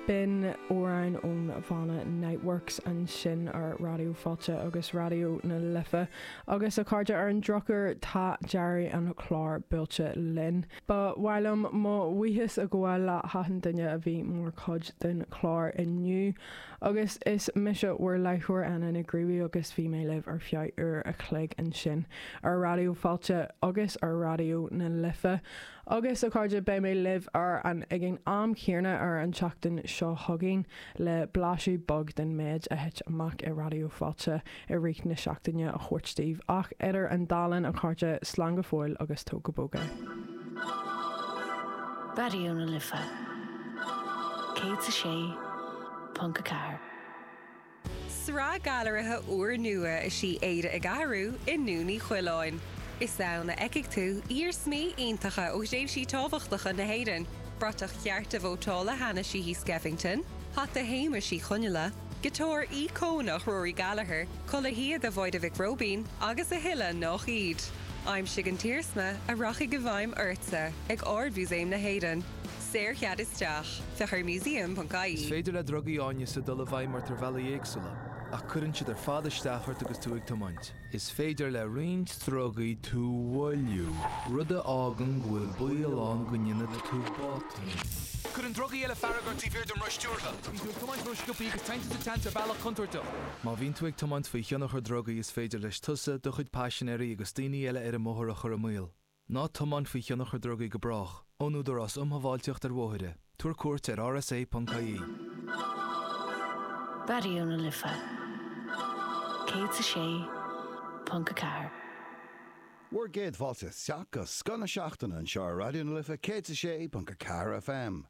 B'in amhrán ón bhanna Niteworks ansin ar Raidió Fáilte agus Raidió na Life agus a chairde ar an drochuair tá deireadh an chláir buailte linn. Ba mhaith liom mo bhuíochas a ghabháil le hachan duine a bhí mar chuid den chlár inniu. Agus is mise bhur láithreoir Anna Nic Ruairí agus bhí mé libh ar feadh uair a chloig ansin ar Raidió Fáilte agus ar Raidió na Life. Agus a chairde beidh mé libh ag an am chéanna ar an tseachtain seo chugainn le blaiseadh beag den méid a thit amach i Raidió Fáilte i rith na seachtaine a thabhairt daoibh ach idir an dá linn a chairde slán go fóill agus tóg go bog é. Raidió na Life 106.4. Sraith gailearaithe úr nua is í Éire ag Athrú i nDún Uí Choileáin. Is ann a fheicfidh tú iarsmaí iontacha ó thréimhsí tábhachtacha na hÉireann, bratach chearta vótála Hannah Sheehy Skeffington, hata Shéamuis Uí Chonghaile, giotár íocónach Rory Gallagher, culaith shíoda Mháire Mhic Róibín agus a thuilleadh nach iad. Aimsigh an t-iarsma a rachaidh i bhfeidhm ortsa ag Ard-Mhúsaem na hÉireann. Saorchead isteach, féach ar museum.ie. Is féidir le drugaí áineasa dul i bhfeidhm ort ar bhealaí éagsúla, ach cuireann siad ar fad isteach ort agus tú ag tiomáint. Is féidir le roinnt drugaí tú a mhoilliú, rud a fhágann go bhfuil baol ann go ndéanfaidh tú botún. Cuireann drugaí eile fearg ort taobh thiar den roth stiúrtha. Bíonn tú ag tiomáint rósciobtha agus téann tú sa tseans ar bhealach contúirteach. Má bhíonn tú ag tiomáint faoi thionchar drugaí is féidir leis tusa, do chuid paisinéirí agus daoine eile ar an mbóthar a chur i mbaol. Ná tiomáin faoi thionchar drugaí go brách. Ón Údarás Um Shábháilteacht ar Bhóithre. Tabhair cuairt ar rsa.ie. Raidió na Life 106.4. Bhur gcéad fáilte isteach go scoth na seachtaine anseo ar Raidió na Life 106.4 FM.